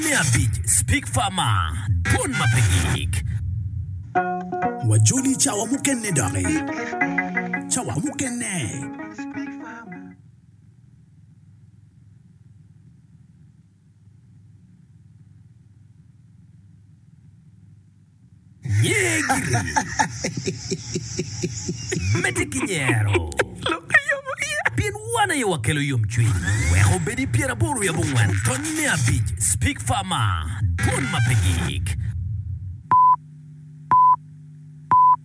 Me abic, Speak Farmer, Dwon ma pe gik. Wajoli cawa mukene doki. Cawa mukene. Nyegi ringo medde ki nyero, pien wan aye wakelo yomcwiny. Wek obed i pyeraboro wiye abongwen tony me abic, Speak Farmer, dwon ma pe gik.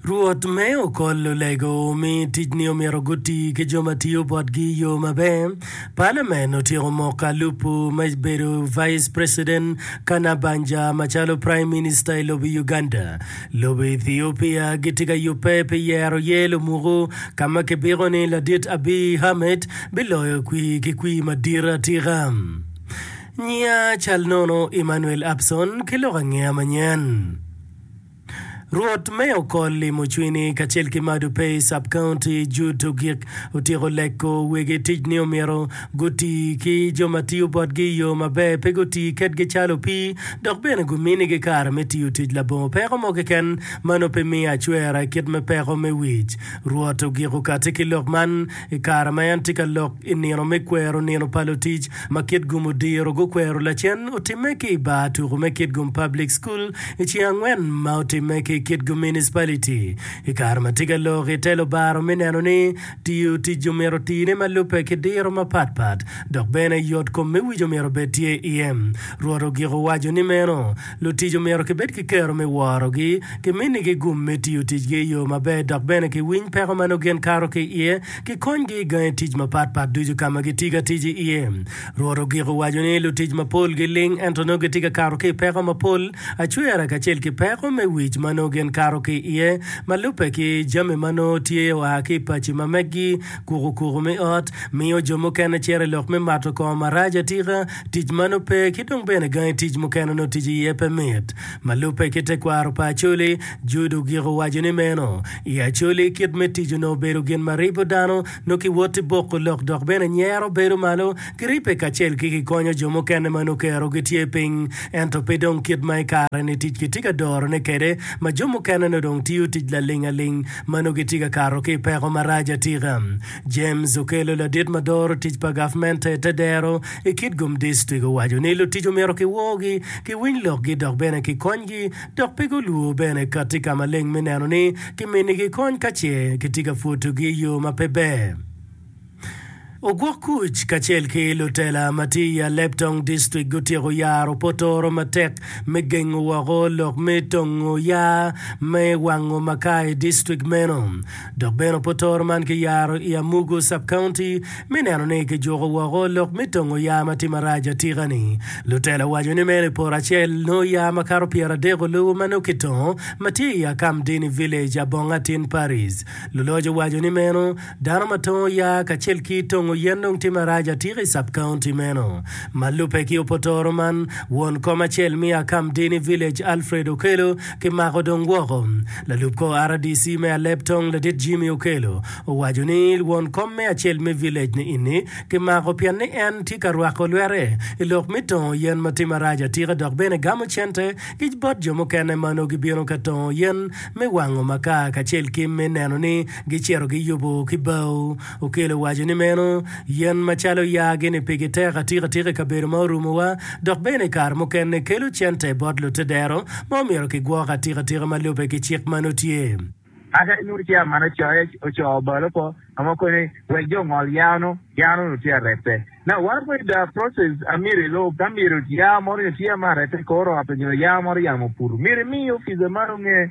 Rwot me okol olego mi tic ni omyero guti ki jo ma tiyo botgi i yo maber. Parliament otyeko moko alupu me bedo Vice President Kanabanja macalo Prime Minister i lobo Uganda. Lobo Ethiopia gitye ka yubbe pi yero yer lumuku ka ma kibiko ni Ladit Abiy Ahmed biloyo kwir ki kwir madit atika. Nyiya cal nono Emmanuel Abson ki lok angeya manyen. Rwot me Okolli Mucwini kacel ki Madu Pay Sub-County Jude Ogik otyeko leko wegi tic ni omyero guti ki jo ma tiyo botgi i yo maber, pe guti kedgi calo opii, dok bene guminigi kare me tiyo tic labongo peko mo keken. Mano pe miyo acwera kit me peko me wic. Rwot Ogik okati ki lok man. I kare ma en tye ka lok i nino me kwero nino pa lutic ma kitgum odiro gukwero lacen otimme ki i bar tuku me Kitgum Public School i ceng angwen ma otimme ki i Kitgum Municipality. I kare ma tye ka lok i te lubaro me neno ni tiyo tic omito tine ma lubbe ki diro mapat pat dok bene yot kom me wic omito bed tye iye, Rwot ogiko waco ni meno. Lutic omyero kibed ki kero me worogi, kiminigi gum me tiyo ticgi i yo maber, dok bene kiwiny peko ma nongo gin kato ki iye, kikonygi i gangi tic mapatpat ducu ka ma gitye ka tic iye. Rwot ogiko waco ni, Lutic mapol giling ento nongo gitye ka kato ki i peko mapol, acwera kacel ki peko me wic ma nongo gin kato ki iye, ma lubbe ki jami ma nongo tye oa ki i paci ma megi, kukukuku me ot, miyo jo mukene ciro i lok me mato kongo marac atika, Tic ma nongo pe, ki dong bene gangi tic mukene nongo tic iye pe mit. Ma lubbe ki tekwaro pa Acholi, Jude ogiko waco ni meno i Acholi kit me tic onongo obedo gin ma ribo dano, nongo kiwoti boko lok dok bene nyero bedo malo kiribbe kacel ki kikonyo jo mukene ma nongo kerogi tye piny ento pe dong kit ma i kare-ni tic kitye ka dorone kwede ma jo mukene nongo dong tiyo tic laling aling ma nongo gitye ka kato ki i peko marac atika. James Okello, ladit ma doro tic pa gavmente te dero i Kitgum Dictrict owaco ni lutic omyero kiworgi, kiwiny lokgi dok bene kikonygi dok pe gulwor bene kati ka maleng me neno ni kiminigi kony ka ce kitye ka pwotogi i yo ma pe ber. Ogwok kuc kacel ki lutela ma tye i Aleptong Dictrict gutyeko yaro potoro matek me gengo woko lok me tongo yaa me wango makaa i dictrict meno. Dok bene opotoro man ki yaro i Amugo Sub-County me neno ni kijuko woko lok me tongo yaa ma tye marac atika-ni. Lutela owaco ni mere i poto acel nongo yaa makato pyeradek olubo ma nongo kitongo ma tye i Akam Dini Village, Abonga Tin Parish. Luloc owaco ni meno dano ma tongo yaa kacel ki tongo yen dong tye marac atika i Sub-County meno. Ma lubbe ki opotoro man, won kom acel me Akam Dini Village Alfred Okello, Kimako dong woko. Lalub kor RDC me Aleb Tong Ladit Jimmy Okello owaco ni won kom me acel me village ni ini kimako pien ni en tye ka rwako lwete i lok me tongo yen ma tye marac atika dok bene gamo cente ki bot jo mukene ma onongo gibino ka tongo yen me wango makar kacel ki me neno ni gicito giyubo ki bao Okelo owaco ni meno yen macalo yagini pigi tek atika atika i kabedo ma orumowa dok bene i kare mukene kelo cente bot lutedero ma omyero kigwok atika atika ma lubbe ki cik ma nongo tye. Aka inongo chairman ocoyo ocoyo balo po ka ma koni wek jo ongol yano, yano onongo tye arette. Now one way the process a myero ilub ka myero yar moro onyo tyer ma arette kor ot onyo yar moro yamo oputu myero imi officer man onge.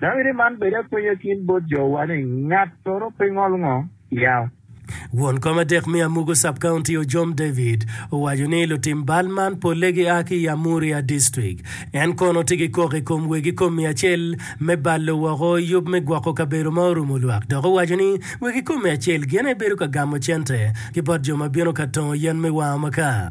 Dawidi man bedo akweya kin bot jowa ni, Ngattoro pe ngol ngo yao. Won kom adek me Amugo Sub-County Ojom David owaco ni lutim bal man polle gia ki i Amuria District. En kono tye ki koko i kom wegi komi acel me balo woko yub me gwoko kabedo ma orumo lwak dok owaco ni wegi komi acel gin aye bedo ka gamo cente ki bot jo ma bino ka tongo yen me wango makar.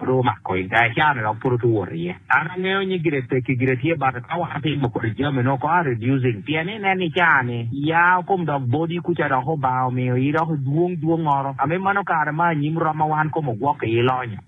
Roma koi da icar ni dok pud otye wot iye. An angeyo ni gire peki gire tye but ka watimo kodi jami nongo kor a reducing pien ni nen ni car ni yao kom dok body kuca dok obanga omiyo iyi dok odwong dwong oro ka me mano kare ma anyim roma wan kom ogwok iyi lonyo.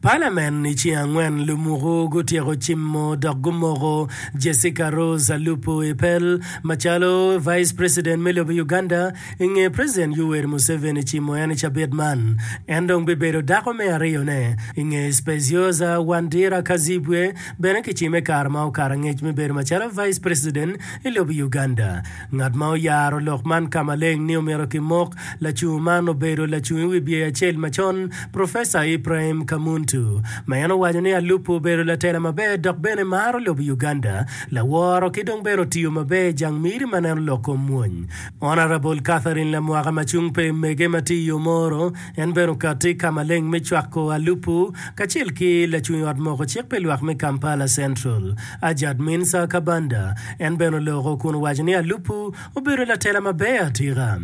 Palamen ni ceng angwen lumuku gutyeko cimo dok gumoko Jessica Rose Alupo Epel macalo Vice President me lobo Uganda. I nge President Yoweri Museveni cimo en i cabit man, en dong bibedo dako me aryo ne. I nge Specioza Wandira Kazibwe bene kicime i kare ma okato angec me bedo macalo Vice President i lobo Uganda. Ngat ma oyaro lok man ka maleng ni omito ki mok lacungo man obedo lacungi wi bye acel macon Professor Ibrahim Kamuntu ma en owaco ni Alupo obedo latela maber dok bene maro lobo Uganda laworo ki dong bene otiyo maber i jang miri ma nen olok kom mwony Honourable Catherine Lamwaka ma cung pe Mege ma tye i Omoro, en bene okati i ka maleng me cwako alupu kacel ki lacung ot moko cik pi lwak me Kampala Central, Ajad Minsa Kabanda, en bene oloko kun owaco ni alupu obedo latela maber atika.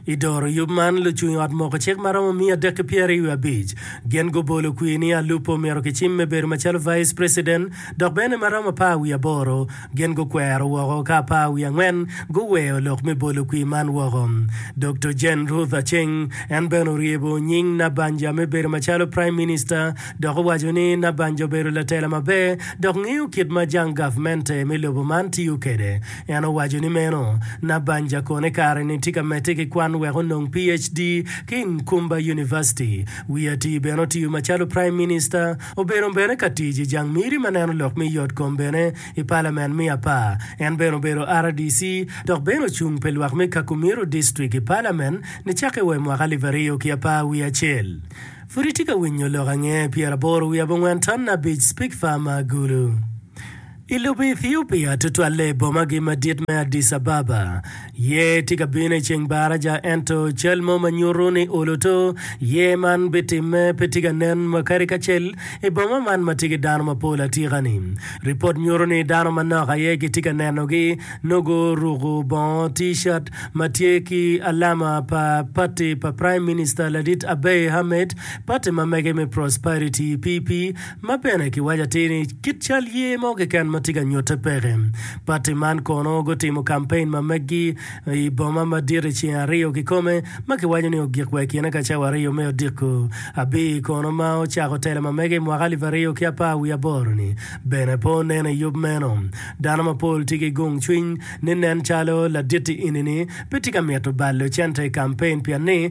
I doro yub man, lucung ot moko cik ma romo miya adek ki pyeraryo wiye abic gin gubolo kwir ni alupu omyero kicim me bedo macalo Vice President dok bene ma romo apar wiye aboro Gin gukwero woko ka apar wiye angwen guweyo lok me bolo kwir man woko. Doktor Jane Ruth Aceng, en bene oryebo nying Nabanja me bedo macalo Prime Minister dok owaco ni Nabanja obedo latela maber dok ngeyo kit ma jang gavmente me lobo man tiyo kwede. En owaco ni meno, Nabanja kono i kare-ni tye ka medde ki kwan wek onong PHD ki i Nkumba University. Wi atii bene otiyo macalo Prime Minister. Obedo bene ka tic i jang miti ma neno lok me yotkom bene i Palament me Apar. En bene obedo rdc dok bene ocung pi lwak me Kakumiro District i Palament nicakke wa i mwaka alip aryo ki apar wiye acel. Pud itye ka winyo lok ange pyeraboro wiye abongwen ton abic Speak Farmer Agulu. I lobo Ethiopia, tutwalle bomagi madit me Addis Ababa, yer tye ka bino i ceng baraja ento cal mo ma nyuto ni oluto yer man bitimme pe tye ka nen ma kadi kacel i boma man ma tye ki dano mapol atika-ni. Ripot nyuto ni dano manok aye kitye ka nenogi nongo guruko bongo T-shirt ma tye ki alama pa pati pa Prime Minister ladit Abiy Ahmed, pati ma mege me Prosperity, PP, Ma bene kiwaco atir ni kit cal yer mo keken ma tye ka nyutte peke. Pati man kono gutimo kampein ma meggi i boma madit i ceng aryo kikome ma kiwaco ni ogik wa i kine ka cawa aryo me odiko. Abiy kono ma ocako telo ma mege i mwaka alip aryo ki apar wiye aboro ni bene pe oneno i yub meno. Dano mapol tye ki gung cwiny ni nen calo laditi eni ni pe tye ka mito balo cente i kampein pien ni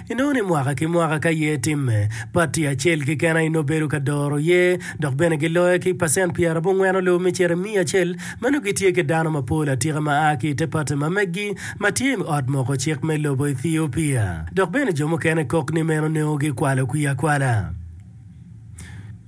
Inongo ni mwaka ki mwaka ka yer timme, pati acel keken aye nongo bedo ka doro yer, dok bene giloye ki pacent pyerabongwen olub me Jeremia acel ma nongo gitye ki dano mapol atika ma a ki i te pati ma meggi ma tye i ot moko cik me lobo Ethiopia. Dok bene jo mukene kok ni meno nongo gikwalo kwi akwala.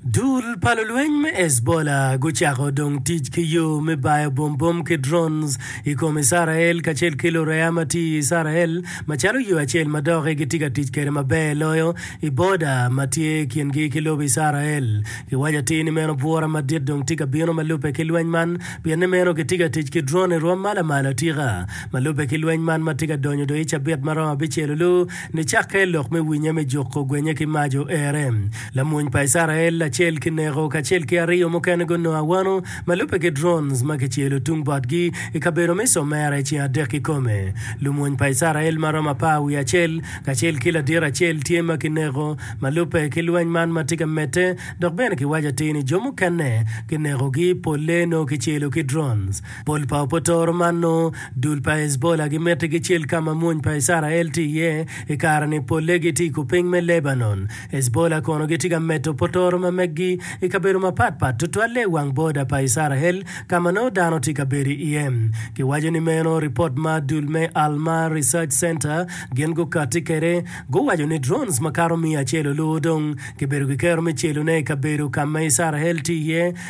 Dul pa lulweny me Hezbollah gucako dong tic ki yo me bayo bombom ki drones i kom Icrael kacel ki lureya ma tye i Icrael macalo yo acel ma doki gitye ka tic kwede maber loyo i boda ma tye i kingi ki lobo Icrael. Giwaco atir ni meno bwura madit dong tye ka bino ma lubbe ki lweny man pien ni meno kitye ka tic ki drone i rwom ma lamal atika. Ma lubbe ki lweny man ma tye ka donyo dong i cabit ma romo abicel-lu, Nicakke lok me winye me juko gwenye ki mac oere. Lamony pa Icrael acel kineko kacel ki aryo mukene gunongo awano ma lubbe ki drones ma kicelo tung botgi i kabedo me Icomere ceng adek kikome. Lumony pa Icrael ma romo apar wiye acel kacel ki ladit acel tye ma kineko ma lubbe ki lweny man ma tye ka medde dok bene kiwaco atir ni jo mukene kinekogi polle nongo kicelo ki drones. Pol pa opotoro man nongo dul pa Hezbola gimiti gicel ka ma mwony pa Icrael tye iye. I kare-ni, polle gitye i kupiny me Lebanon. Hezbola kono gitye ka medo opotoro ma meggi i kabedo mapat pat, tutwalle i wang boda pa Icrael ka ma nongo dano tye ka bedo iye. Giwaco ni meno ripot ma dul me Al-Mar Research Center gin gukatti kwede guwaco ni drones makato miya acel olur dong gibedo gikero me celone i kabedo ka ma Icrael tye iye